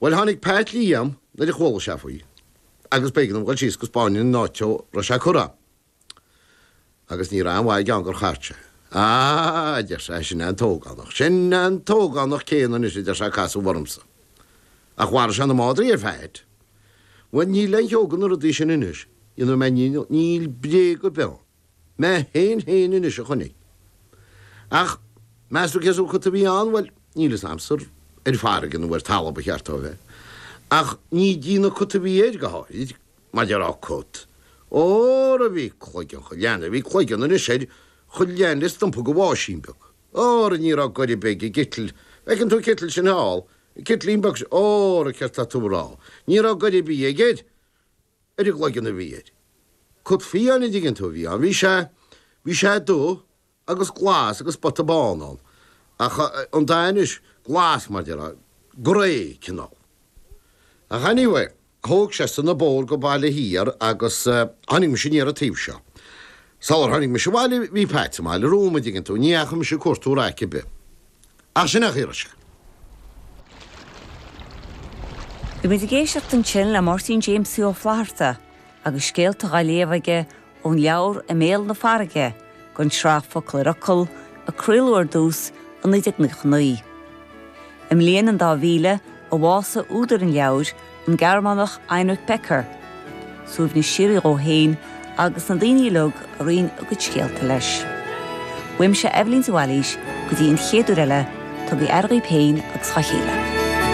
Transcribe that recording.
Bhuel, tháinig Pat Liam nuair a chuala sé faoi, agus b'éigean dom dhul síos go spáinfinn an áit dhó a raibh sé curtha. Agus ní raibh aon mhaith aige ann gur chart sé. Á, a deir sé, sin é an t-ógánach, sin é an t-ógánach céanna anois, a deir sé, a casadh ormsa. Ach mharaigh sé na madraí ar Phat. Bhuel, níl aon cheo de na rudaí sin anois ina mbréag, níl bréag ar bith ann. Mé fhéin fhéin anois a chonaic. Ach meas tú cén sórt cut a bhí ann? Bhuel, níl fhios a'msa ar farraige nó ar talamh ba cheart dó a bheith, ach ní déanamh cut a bhí air, go háirid, mar a déarfá cut. Óra bhí cloigeann cho leathan a bhí cloigeann anois air, cho leathan le stumpa de bháisín beag. Óra ní raibh goir a' bith ag an gcitl, bhfeiceann tú an citl sin thall, an citlín beag sin, óra céard tá tú a' rá, ní raibh goir a' bith aige air. ar an gcloigeann a bhí air. Cut fiáin, an dtuigeann tú, a bhí ann. Bhí sé, bhí sé dubh agus glas agus spota bán ann. Ach eh, an dath anois, glas mar déarfá, grey cineál. Ach anyway, thóg seisean an bóthar go Baile Thiar agus eh, choinnigh mise aniar an taobh seo. Sular tháinig mise abhaile, bhí Pat sa mbaile romham, an dtuigeann tú, ní dheachaigh mise ag cuartú raic ar bith. Ach sin a thuairisc. Bhí muid ag éisteacht ansin le Máirtín Jamesie Ó Flatharta agus scéalta dhá léamh aige ón leabhar I mBéal na Farraige den tsraith Focal ar Fhocal a craoladh ar dtús i 1999. I mbliain an dá mhíle a bhásaigh údar an leabhair, an Gearmánach Heinrich Becker, suaimhneas síoraí dhó fhéin, agus na daoine uilig a roinn a gcuid scéalta leis. Uaimse Eibhlín de Bhailís go dtí an chéad uair eile, tugaigí aire dhaoib fhéin agus dhá chéile.